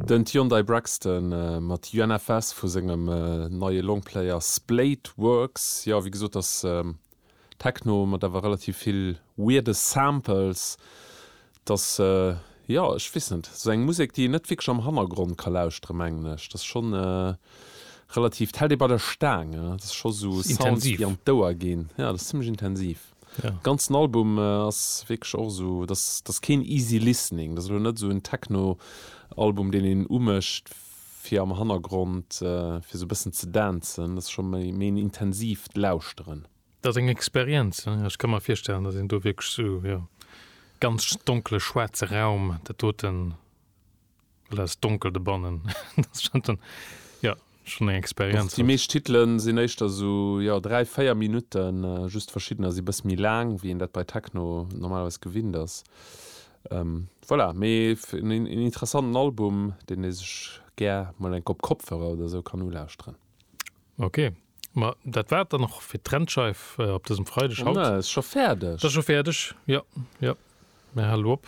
Den Tiondai Braxton mat UNFS vu sengem neie Longplayer Splate Works. Jo, wéi gesot ass Techno mat awer relativ vill weirde Samples. Et ass, jo ech weess net, sou eng Musek déi een net wierklech am Hannergrond ka lauschtere mengen ech. Et ass scho relativ, et hält ee bei der Staang. Et ass scho sou Sounds déi an d'Ouer ginn. Jo, et ass zimmlech intensiv. Ganz den Album ass wierklech och esou, et ass keen easy listening, et ass elo net esou en Techno Album deen een umécht fir am Hannergrond fir esou e bëssen ze dancen, et ass scho méi méi en intensiivt Lauschteren. Dat ass eng Experienz, jo, ech ka mer virstellen, datt een do wierklech esou, jo, ganz donkele schwaarze Raum, dat doten. Well ass donkel de bannen ass schënt an jo schonn eng Experienz. Déi meescht Titelen sinn éischter esou jo 3, 4 Minutten, just verschiddener si bëss méi laang wéi een dat bei Techno normalerweis gewinnt ass. Voilà, mee en interessanten Album deen ee sech gär mol eng Kopp Kopfhörer oder esou kann ulauschteren. Ok, ma dat war et dann och fir d'Trendscheif op dësem Freideg. Haut. Scho fäerdeg? Scho fäerdeg, jo jo, mär hale lo op.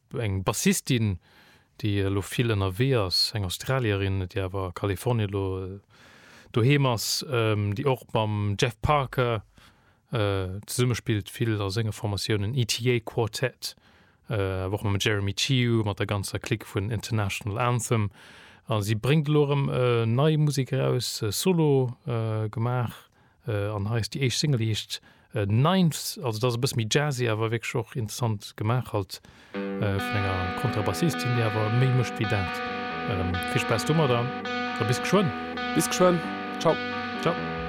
Eng Bassistin, déi elo vill ënnerwee ass, eng Australierin, déi awer a Kalifornien elo doheem ass, déi och mam Jeff Parker zesummespillt, vill a senge Formatiounen, ETA Quartet, awer och mam Jeremy Chiu, mat der ganzer Clique vun International Anthem. A si bréngt elo erëm nei Musek eraus, solo gemaach, An hei ass déi éischt Single, déi heescht Ninths. Also dat ass e bësse méi jazzy, awer wierklech och interessant gemaach halt, vun enger Kontrabassistin, déi awer méi mécht wéi dat. Vill Spaass domadder a bis geschwënn! Bis geschwënn! Ciao! Ciao!